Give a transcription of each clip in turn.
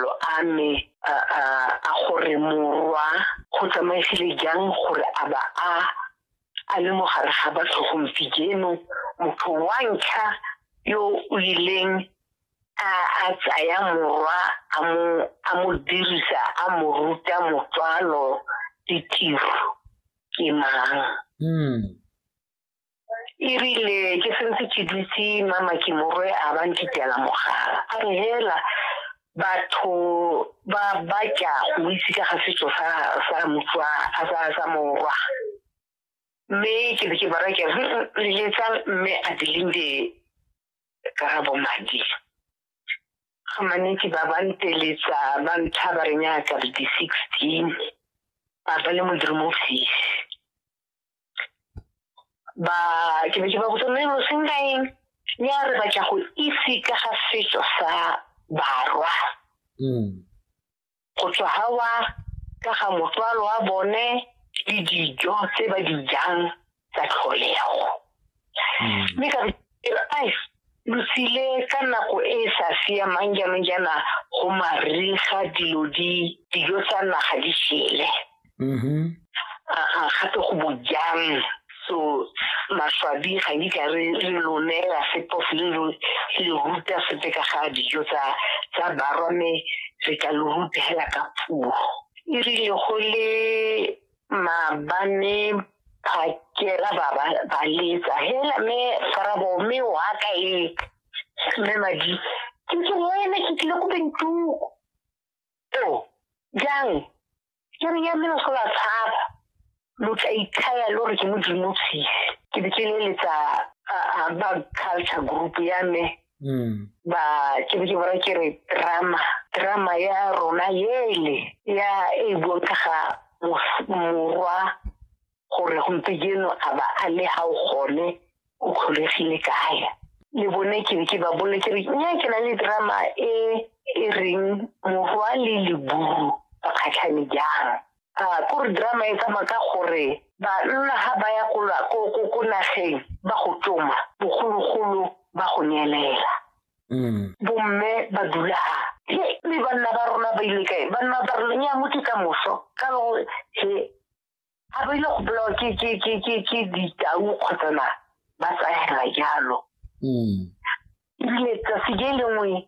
lo a me a a- a gore morwa go tsamaegile jang gore a ba a a le mo gare ga batho gompieno motho wa ntlha yo o ileng a a tsaya morwa a mo a mo dirisa a mo ruta motswalo ditiro ke mang Mm. erile ke sentse ke dutse mama ke morwe a ba ntitela mogala a re hela batho ba ba tla go itse ka ga setso sa sa motswa a sa sa morwa mme ke be ke bara ke le letsa mme a dilinde ka ga bomadi ga manetsi ba ba nteletsa ba ntlha ba re nyaka di sixteen ba ba le modimo ofisi ba ke be ke ba botsa mme lo senka eng ya re batla go itse ka ga setso sa barwa mm. go tswa gawa ka ga motswalo wa bone le dijo tse ba di jang tsa tlholego mm. mme ka ai lo tsile ka nako e e sa siamang jaanong jaana go mariga dilo di dijo tsa naga di shele mm-hmm. gape go bojang so maswabi ga di ka re lo neela sepo le lo le ruta sepe ka ga dijo tsa tsa barwa mme re ka lo rutela ka puo e rile go le maabane phakela ba ba ba letsa hela me farabo me wa ka e me madi ke ke wena ke tlile go bentuko to jang ke re ya me lo sola tshaba lo tla ithaya lo re ke modimo tshisi ke be ke leletsa ba culture group ya me mm. ba ke be ke bona ke re drama drama ya rona ele ya e bontshaga morwa gore gompieno a ba a le ga o gone o kgolegile kae le bone ke be ke ba bole ke re nya ke na le drama e e reng morwa le leburu ba kgatlhane jang a ko re drama e tsamaya ka gore banna ga ba ya ko nageng ba go tsoma bogologolo ba go neelela mm. bomme ba dula he le banna ba rona ba ile kae banna ba rona nya motho ka moso ka lo he ga ba ile go bolawa ke ke ke ke ke ditau kgotsa na ba tsayela jalo mm. ile tsatsi le lengwe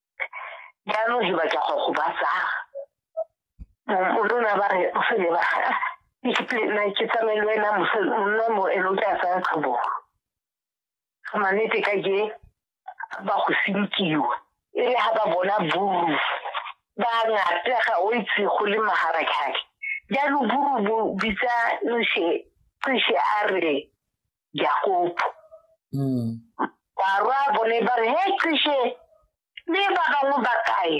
jaanong ke batla go go batsa o lona ba re o fele ba na ke tsamaile wena monna mo e lo tla tsaya tlhobo ga manete ka ke ba go sinkiwa e le ga ba bona buru ba ngata ga o itse go le magara khake jaanong buru bo bitsa noshe cishe a re jakopo mm. barwa bone ba re he qishe le ba bangwe ba kae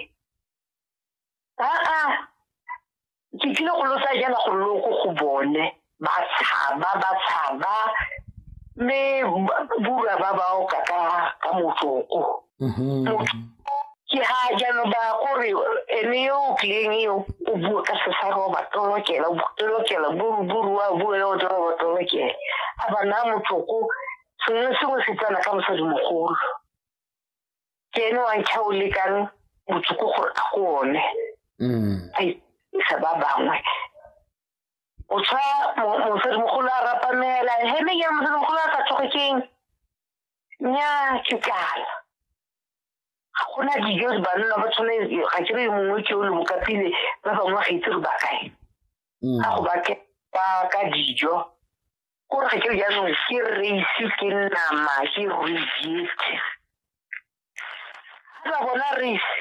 aa ke tlile go losa jana go loko go bone ba tshaba ba tshaba mme bura ba bao ka ka motsoko mm-hmm. motho ke ha jaanong ba gore ene yo o tlileng eo o bue ka sesaro ba tolokela tolokela buruburu wa bue yo toro ba tolokela a ba naya motsoko sengwe le sengwe se tsena ka mosadi mogolo ke ene wa ntlha o lekang motsoko gore a go one mm. a isa ba bangwe o tshwa mosadimogolo a rapamela heme ya mosadimogolo a sa tsoge keng nnyaa ke kala ga gona dijo banna ba tshwane ga ke re mongwe ke o le bokapile ba bangwe ga itse re ba kae mm. ga go bake ba ka dijo kore ga ke re jaanong ke raise ke nama ke rejete ba bona raise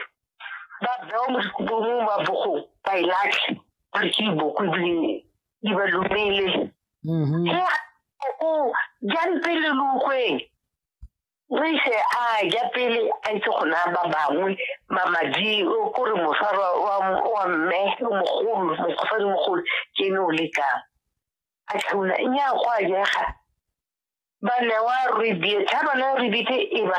ba bewa mo dikobong ba bogong ba e latlhe ba re ke iboko ebile di ba lumele mm-hmm. he o jang pele lukgweng re ise a ja pele a itse gona ba bangwe mamadi o kore mosarwa wa mme o mogolo mosadi mogolo ke ne o lekang a tlhauna nya go a jega ba newa rebie thabana rebite e ba